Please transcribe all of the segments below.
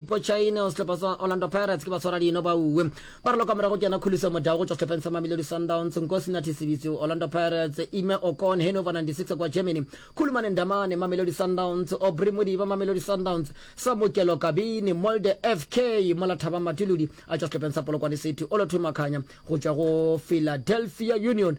Mpo China o sehlopha sa Orlando Pirates ke ba tshwara dino ba uwe ba re loka morago ke yena khuliso modao go tšwa sehlopheng sa Mamelodi Sundowns Nkosi Nathi Sibitsi Orlando Pirates Ime Okon Hannover 96 kwa Germany Khulumane Ndamane Mamelodi Sundowns Aubrey Modiba Mamelodi Sundowns Samukelo Kabini Molde FK mola Thabang Matuludi a tšwa sehlopheng sa Polokwane City Olothumakhanya go tšwa go Philadelphia Union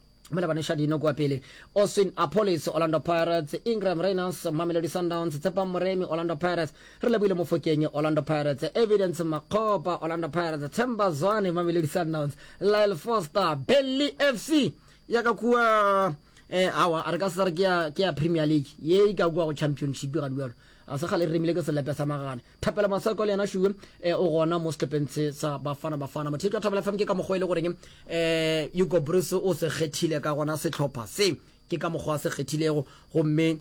mola ba neša dino kua pele austin apolis orlando pirates ingram rainers mamelodi sundowns tshepang moremi orlando pirates re leboile mofokeng orlando pirates evidence makgopa orlando pirates temba zwane mamelodi sundowns lyle foster belly fc ya ka kua eh awa a re ka se re ke ya premier league ye e ka kua go championship ga dualo a se gale re remile ke selepe sa magana Thapelo Maseko le yena Shuwe eh, o gona mo setlhopheng se sa Bafana Bafana. Motheto wa Thapelo FM ke ka mokgwa e le goreng eh, Hugo Bruce o se kgethile ka gona setlhopha se ke ka mokgwa a se kgethilego gomme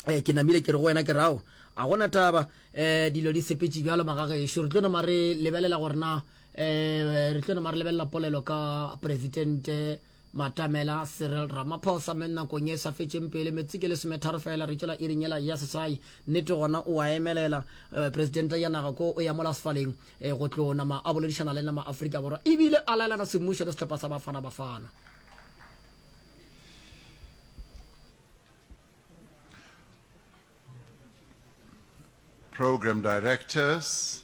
eh, ke namile ke re go wena ke rao a gona taba eh, dilo di sepetse bjalo magagešo re tlo nama re lebelela gore na eh, re tlo nama re lebelela polelo ka presidente Batamela Cyril Ramaphosa me nakong ye e sa fetšeng pele metsi ke lesometharo fela re tšwela iring yela ya sesai nnete gona o a emelela eh, presidente ya naga ko o ya mola sefaleng eh, go tlo nama a boledišana le nama Afrika Borwa ebile a laelana semmušo le sehlopha sa Bafana Bafana. Program directors,